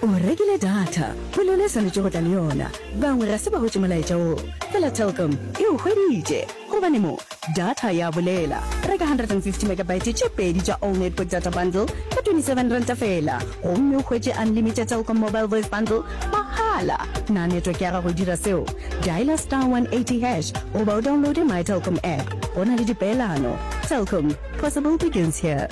O rekile data, ke lona e swanetše go tla le yona. Bangwe ga se ba hwetše molaetša wo, fela Telkom e o hweditše. Gobane mo, data ya bolela. Reka 150 megabyte tše pedi tša All Network Data Bundle ka 27 ranta feela, gomme o hwetše unlimited Telkom Mobile Voice Bundle mahala. Na network ya gago e dira seo? Dialer star 180 hash goba o downloade MyTelkom app. Go na le dipeelano. Telkom, possible begins here.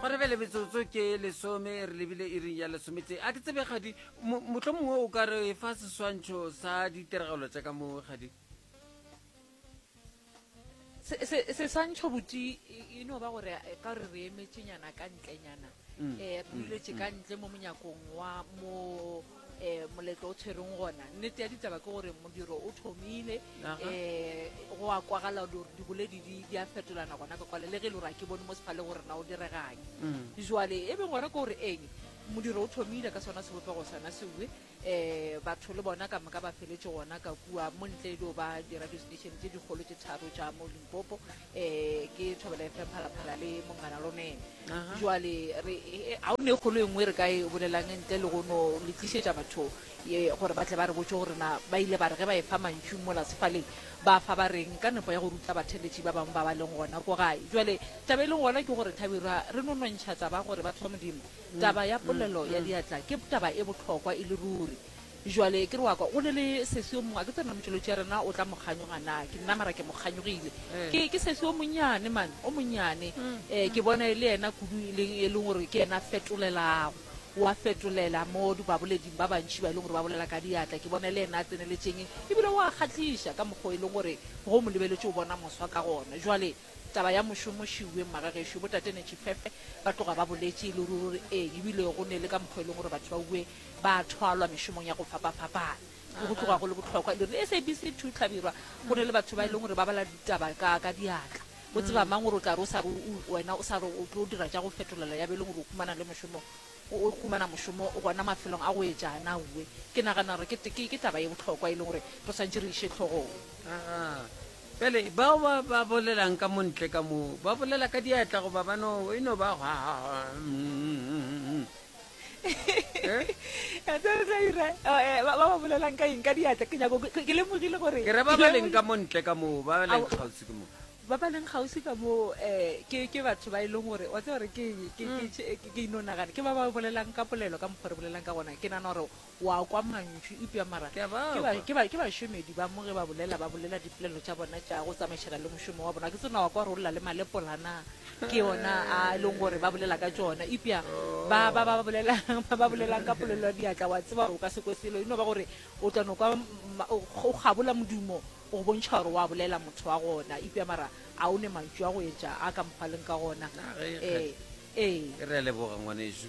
go re bele metsotso ke lesome re lebile e reng ya lesometse a ke tsebe gadi motlho mongwe o ka re fa seswantšho sa ditiragalo tša ka mo gadi seswantšho boti e, e no ba gore eh, ka gore re emetšenyana ka ntlenyana um mm. eh, re duletše ka ntle mo monyakong wa mo um moletlo o tshwereng gona nnete ya ditaba ke gore modiro o thomile um go a kwagala gore diboledi di a fetolana gona ka kwale le ge e le gore a ke bone mo sefale gore na o direganye mm. jale e beng gore ke gore eng modiro o thomile ka sona sebopego sona sewe um batho le bona ka moka ba feletse gona ka kua mo ntle e dio ba di-radio station tse dikgolo tse tharo tša mo limpopo um ke thobela fm phalaphala le mongana lone Aha. jwale re e- ga o ne kgolo e nngwe re ka e bolelang ntle le go no le tlišetša batho ye gore ba tle ba re botse gore na ba ile ba re ge ba e fa mantšung mola sefaleng ba fa ba reng ka nepo ya go ruta batheletši ba bangwe ba ba leng gona ko gae jwale taba e leng gona ke gore thabirwa re no nontšha taba gore batho ba modimo taba ya polelo ya diatla ke taba e bohlokwa e le ruri Bjale, ke re wa kwa, go na le sesi yo mongwe, a ke tsebe na motšweletši ya rena o tla mo kganyoga na, ke nna, mara ke mo kganyogile. Ke, ke sesi o monnyane, man, o monnyane. Ee, ke bona e le yena kudu, e leng, e leng gore ke yena a fetolelago. O a fetolela mo di, baboleding ba bantši ba e leng gore ba bolela ka diatla. Ke bona e le yena a tseneletšeng, ebile o a kgahliša ka mokgwa o e leng gore ge o mo lebeletše o bona moswa ka gona. Bjale. Taba ya mošomo šiwe mma ga gešo bo tate ne tšhifefe ba tloga ba boletše e le ruri gore ee ebile go ne le ka mokgwa e leng gore batho ba uwe ba thwalwa mešomong ya go fapafapana ke go tloga go le bohlokwa e le gore SABC two tlhabirwa go ne le batho ba e leng gore ba bala ditaba ka ka diatla o tseba mang gore o tla re o sa re wena o sa re o tlo dira tša go fetolela ya be e leng gore o humana le mošomo o humana mošomo gona mafelong a go etša na uwe ke nagana gore ke ke taba e bohlokwa e leng gore re swantše re iše tlhogong Bjale, bao ba, ba bolelang ka mo ntle ka moo, ba bolela ka diatla goba ba no, e no ba hwa, hwa, hwa, mm. Eh? Ya tsaya re tla ira, oh, eh, ba ba ba bolelang ka eng ka diatla ke nyako ke ke lemogile gore ke re ba ba leng ka mo ntle ka moo ba ba leng Ao. kgauswi ke moo ba ba leng gausi ka moo um ke ke batho ba e leng gore wa tseba gore ke eng? ke ke- ke- ke ino nagana ke ba ba bolelang ka polelo ka mokgwa re bolelang ka gona ke nana gore O a kwa mantšu, eupša mara ke a ba kwa. Ke, ke, ke bašomedi ba mo ge ba bolela, ba bolela dipolelo tša bona tša go tsamaišana le mošomo wa bona. Ga ke tsebe na o a kwa gore o lla le malepora na. Ke yona a e leng gore ba bolela ka tšona, eupša ba, ba, ba, ba bolelang, ba, ba bolelang ka polelo ya diatla. O a tseba gore o ka se kwe selo. E no ba gore o tla no kwa ma, o, o kgabola modumo go go bontšha gore o a bolela motho wa gona, eupša mara a o ne mantšu a go etša a ka mokgwa a leng ka gona. Ee, ee. Re a leboga, ngwanešu.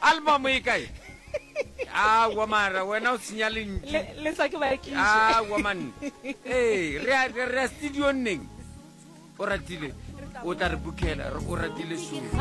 Album e kae? Aowa mara wena o senya lentšu. Le le sa ke ba ke. Aowa man. Ee, re a re a studio neng? O ratile. O tla re bukela, o ratile sure.